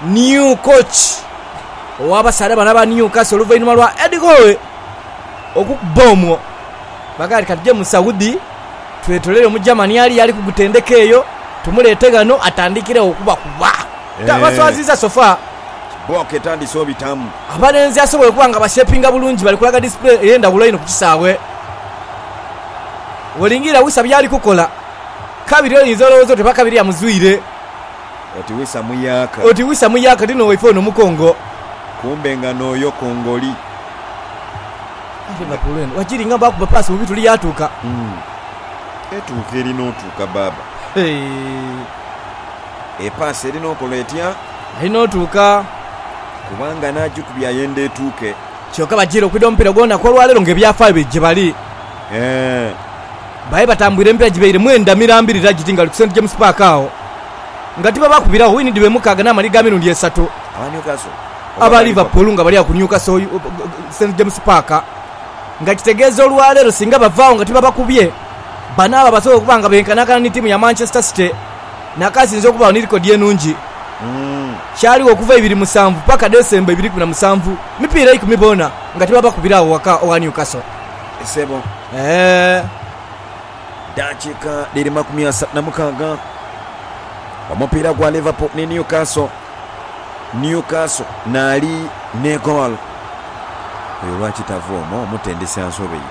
new coach ow'abasaadha bano aba Newcastle oluvainhuma lwa Eddie Howe okukubba omwo. Baagala ati katuje mu Saudi twetolere Omugermani ali ali ku gutendeka eyo, tumuleete ghano atandikiregho okubakuba. Tabaswaziza so far. Kibboka etandise obitamu. Abalenzi asobola okuba nga bashepinga bulungi bali kulaga disipulini ey'endhaghulo einho ku kisaawe. Bw'olingirira Wissa by'ali kukola, kabiri oyinza olowooza oti oba kabiri amuzwire. Oti wisa muyaaka. Oti wisa muyaaka ti n'owaife ono mukongo. Kumbe nga n'oyo kongoli. Aye Liverpool eno wakiri nga baakuba paasi bubi tuli yaatuuka. Etuuka eri n'otuuka baaba. Hee. Epaasi eri n'okola etya? Eri n'otuuka. Kubanga n'agikubye ayenda etuuke. Kyoka bajiire okwidha omupiira gw'olunaku olwaleero ng'ebyafaayo biri gyebali. Eeh. Baye batambwire emipira gibaire mwenda mirambirira giti nga guli ku St James Park agho nga tibabakubiragho wini dhibaire mukaaga n'amali ga mirundi esatu. Aba Liverpool nga bali agho ku Newcastle St James Park nga kitegeeza olwaleero singa bavaagho nga tibabakubye, banaaba abasobola okuba nga benkanankana ni tiimu ya Manchester City n'akaasinze okubaagho ni likodi enungi kyaligho okuva ibiri musanvu paaka Decemba ibiri ikumi na musanvu mipiira ikumi boona nga tibabakubiragho ghaka ogha Newcastle. Isebo. Eddakiika dhiri makumi asatu na mukaaga omupiira gwa Liverpool ni Newcastle. Newcastle naali n'egoolo. Oyo lwaki tava omwo? Omutendesi ansobeire.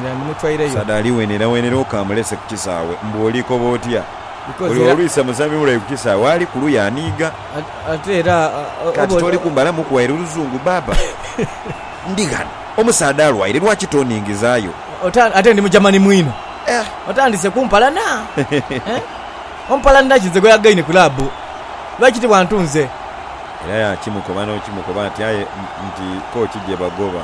Yandimutwaireyo. Omusaadha ali wenerawenera oka amulese ku kisaawe mbu olikoba otya? Because Buli era- olwisa muzanhi mule ku kisaawe ali ku luya aniiga. Ate era Kati toli kumbalamu kuwaire luzungu baaba. Ndi ghano. Omusaadha alwaire lwaki tondhingizaayo? Ate ndi Mugermani mwino. Otandise kumpalana eh? Ompalanira ki nze gwe yagaine club? Lwaki tiwantu nze? Era yakimukoba n'okimukoba ati aye nti kooki gye bagoba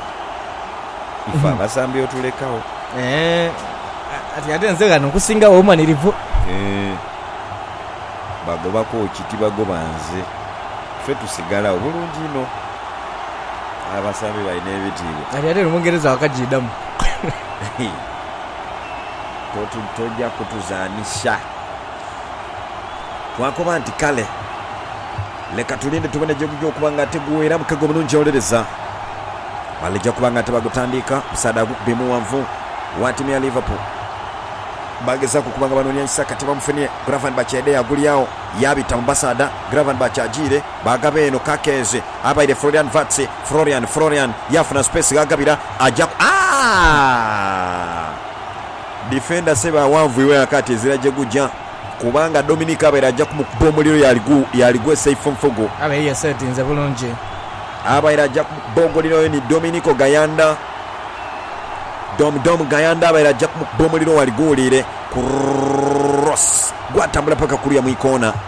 ife abasambi otulekagho. Eh, ati ate nze ghano nkusingagho obumanirivu. Eh, bagoba kooki tibagoba nze. Ife tusigalagho. Bulungi inho. Aye abasambi balina ebitiibwa. Kati ate Omungereza wakajiidhamu. Toja kutuzanhisa. Twakoba nti kale. Leka tulinde tubone jegugya okuba nga ate guweeramu ke gwomunhonjolereza. Ghale eja kuba nga ate bagutandiika. Omusaadha agukuba mughanvu wa tiimu ya Liverpool. Bagezaku okuba nga banoonia Isaka tibamufunie. Gravenberch yaidha yagulyagho yaabita mu basaadha. Gravenberch ajiire. Baagaba eno Kakenzi abaire Florian Wirtz. Florian, Florian yaafuna space gh'agabira, ajaku. Aah! Defender ssebo awanvuirwe ghaka ati ezira gye gugya kubanga Dominic abaire aja kumukuba omuliro yaaligwe safe nfugu. Abaire yesetinze bulungi. Abaire aja kumukuba omuliro oyo ni Dominico Gayanda. Dom Dom Gayanda abaire aja kumukuba omuliro waali guwuliire. Cross! Gwatambula paka kuliya mu ikoona.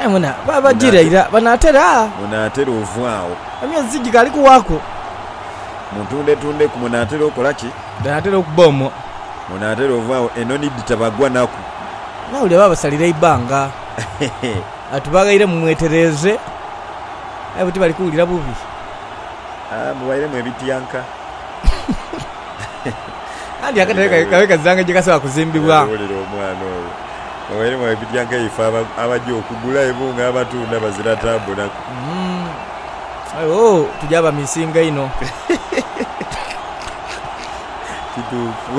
Aye mwena babagira ira banaatera. Munaatera ovwagho. Emyezi gikaali kuwaaku. Muntundetundeku. Munaatera okola ki? Banaatera okuba omwo. Munaatera ovwagho enoni dhitabagwa naku. Naule baabasalira eibanga ati, Baghaire mumwetereeze, aye bwe tibali kuwulira bubi. Mubairemu ebityanka. Anti akatale kaibwe kabe kazanga gye kasobola kuzimbibwa. Era wulira omwana oyo. Oba erimu ebidya nga ife abaja okugula ibo nga abatunda bazira taabu naku. Aye ooh tuja abamisinga inho. Kituufu.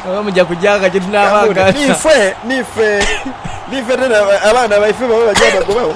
Oba muja kujaagha gye tunaabanga. Niife, niife, niife tena abaana baife baba baja bagobagho.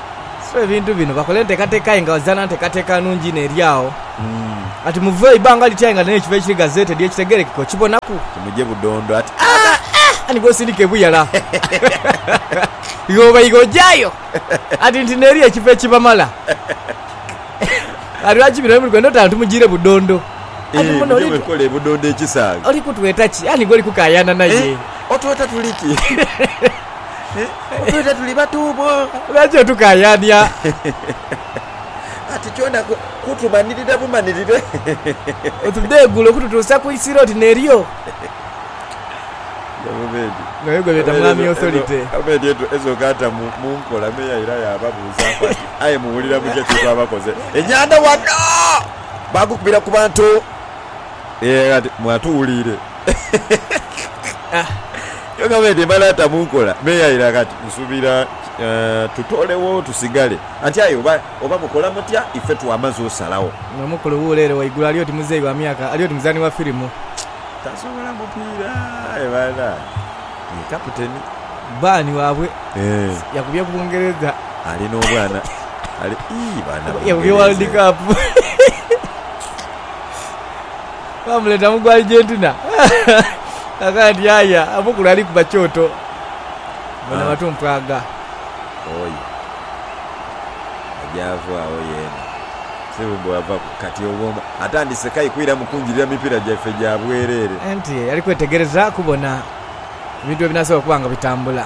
So ebintu bino bakola enteekateeka aye nga bazaana nteekateeka nnungi inho eri agho. Ati muve ibanga liti aye nga neno ekiva ekiri gazeetedi ekitegeerekeka okibonaku. Kimuje budondo ati, Aa! Ani gw'osindika ebuyala? Ighoba ighe ojayo ati nti n'eri ekiva ekibamala. Ati lwaki bino bye muli kwenda oti ano tumujiire budondo? Ati muno oli kutweta ki? Ani gw'oli kukaayana naye? Otweta tuli ki? Twidha tuli batuubwo. Nakyo tukaayania. Kati kyona kutumanirira bumanirire. Otudheegula okututuusa ku isiro oti neryo. Nga yo gwe beeta Mwami Authority. Obeedi ezo gaata mu nkola me yaira yaababuuzaaku ati, Aye muwulira mutya kye twabakoze enyanda wano? Baagukubira ku bantu. Kati mwatuwuliire. Yo gavumenti emala ata mu nkola n'eyayira kati? Nsuubira tutoolewo tusigale. Anti aye oba, oba mukola mutya, ife twamaze osalagho. Nga mukulu wuule ere waigulu ali oti muzeeyi wa myaka, ali oti muzaani wa firimu. Tasobola mupiira aye banange. Ye kaputeni. Bbaani waabwe yakubye Bungereza. Ali n'obwana, ali, ii, baana Bungereza. Yakubye World Cup. Baamuleeta mu gwa Argentina. Akakana nti, Aye omukulu ali kuba kyoto. Bona batu mpwaga. Oyo aja ava agho yeena. Sebo bwavaku kati obwoma atandise kai kwiramu kunjirira mipira gyaife gya bwerere. Anti ali kwetegereza kubona ebintu bwe binaasobola okuba nga bitambula.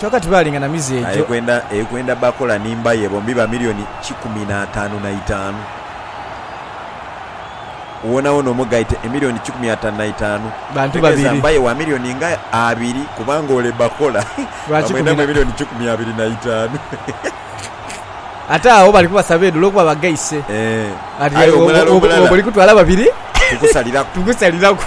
Kyoka tibaalinga na mize egyo. Aye kwenda bakola ni mbaye bombi ba milioni kikumi na ataanu na itaanu. Wonawona omugaite emilioni kikumi ataanu na itaanu, otegeeza mbaye wa milioni nga abiri kubanga ole bakola bamwendamu emilioni kikumi abiri na itaanu. Ate agho bali kubasa beedu olwokuba bagaise. Ati, Aye omulala omulala. Bw'olikutwala babiri tukusaliraku.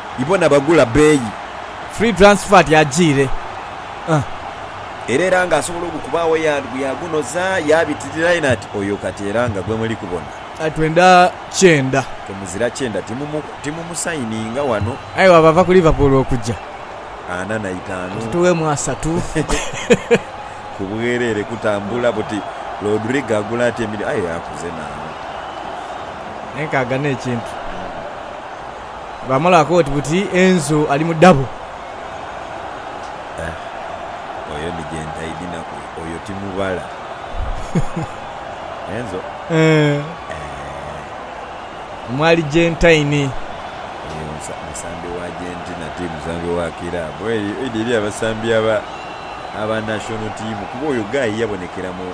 Ibo na bagula beeyi. Free transfer ti ajiire ah. Era era nga asobola ogukubaagho yand bwe yagunoza yabitirira yena ati oyo kati era nga gwe muli kubona. Aye twenda kyenda. Ke muzira kyenda ti mu mu sayininga wano. Aye bwaba ava ku Liverpool okuja. Ana na itaanu. Ati tugheemu asatu. Ku bwerere kutambula buti. Rodrigo agula atya emilioni. Aye akuze naanu. Enkaaga ne kintu. Bamala koti buti Enzo ali mu dabo. Eeh oyo ni gentaidhi naku oyo timubala Enzo eeh. Mwali gentaine. Oyo musambi wa Argentina ti musambi wa kiraabu. Oidha eri abasambi aba national team kuba oyo guy yabonekera mu.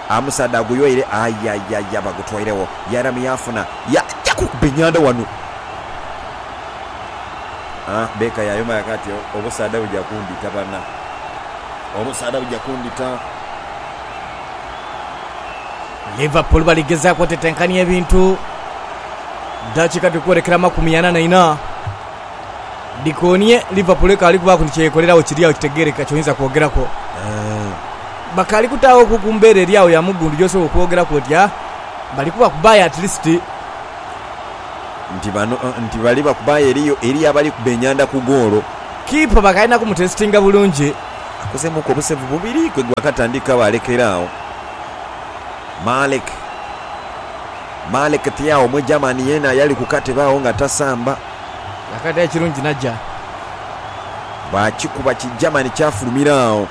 Amusaadha aguyoire aye aye aye aba agutoiregho. Yairamu yaafuna. Yaajaku okuba enhandha ghano. A Baker yaayoma yaakoba ati, Obusaadha buja kundhita bana. Obusaadha buja kundhita. Liverpool bali gezaaku otetenkania ebintu. Dakiika dhiri kwolekera amakumi ana na ina. Dhikoonie, Liverpool ekaali kubaaku ni kye yekoleragho kiri agho kitegeerekeka ky'oyinza kwogeraku. Eeh. bakaali kutaaghoku ku mbeera eri agho ya mugundu gy'osobola okwogeraku oti, Ah, bali kubakubaayo at least. Nti bano, nti bali bakubaayo eriyo, eriyo abali kuba enyanda ku goolo. Kiipa bakaalina kumutesitinga bulungi. Akozeemuuku obusevu bubiri kwe gwakatandika baalekera agho. Malik, Malik Thiaw Omwigermani yeena yali ku katebe agho nga tasamba. Yakaata ekirungi n'aja. Baakikuba Kigermani kyafulumira agho.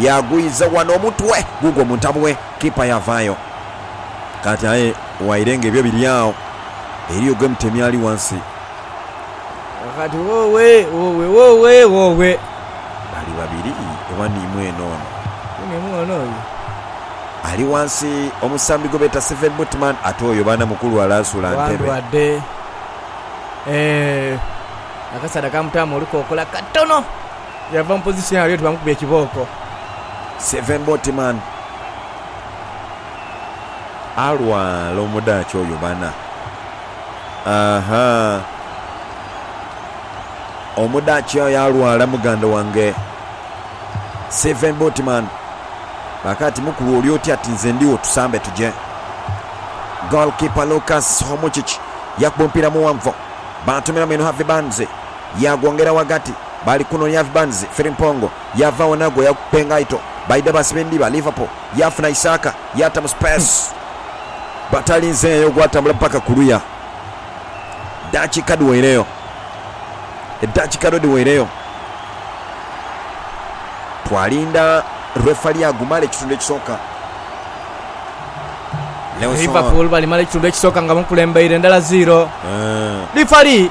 yaagwiza ghano omutwe gugwo mu ntabwe, kiipa yaavaayo. Kaati aye waire ng'ebyo biri agho, eriyo gwe mutemi ali ghansi. Kaakati woowe, woowe, woowe, woowe! Bali babiri oba niimwe eno ono? Ni niimwe ono oyo? Ali ghansi omusambi gwe beeta Steven Butman, ate oyo baana mukulu ale asula ntebe. Wandwadde. Eeh. Akasaadha kaamutaamu olukokola katono. Yava mu position ali oti bamukubye ekibooko. Seven Boatman alwala omudaaki oyo bana. Ahaa. Omudaaki oyo alwala muganda wange. Seven Boatman baka ati mukulu oli oti ati nze ndigho tusambe tugye. Goalkeeper Lucas Homuchich yakuba omupiira muwanvu. Batumiramu eno Harvey Barnes. yaagwongera ghagati. Baali kunoonia Avi Barnes, Firimpongo yaava agho nagwo yakukupa engaito. Baidha baasiba endhiba, Liverpool yaafuna Isaaka yaata mu sipeesi. Batalinzeeyo gwatambula paka ku luya. Eddakiika dhiweireyo. Eddakiika dho dhiweireyo. Twalinda lwefali agumale ekitundu ekisooka. Leonson. Liverpool balimala ekitundu ekisooka nga bamukulembeire ndala ziiro. Eeh. Lifali.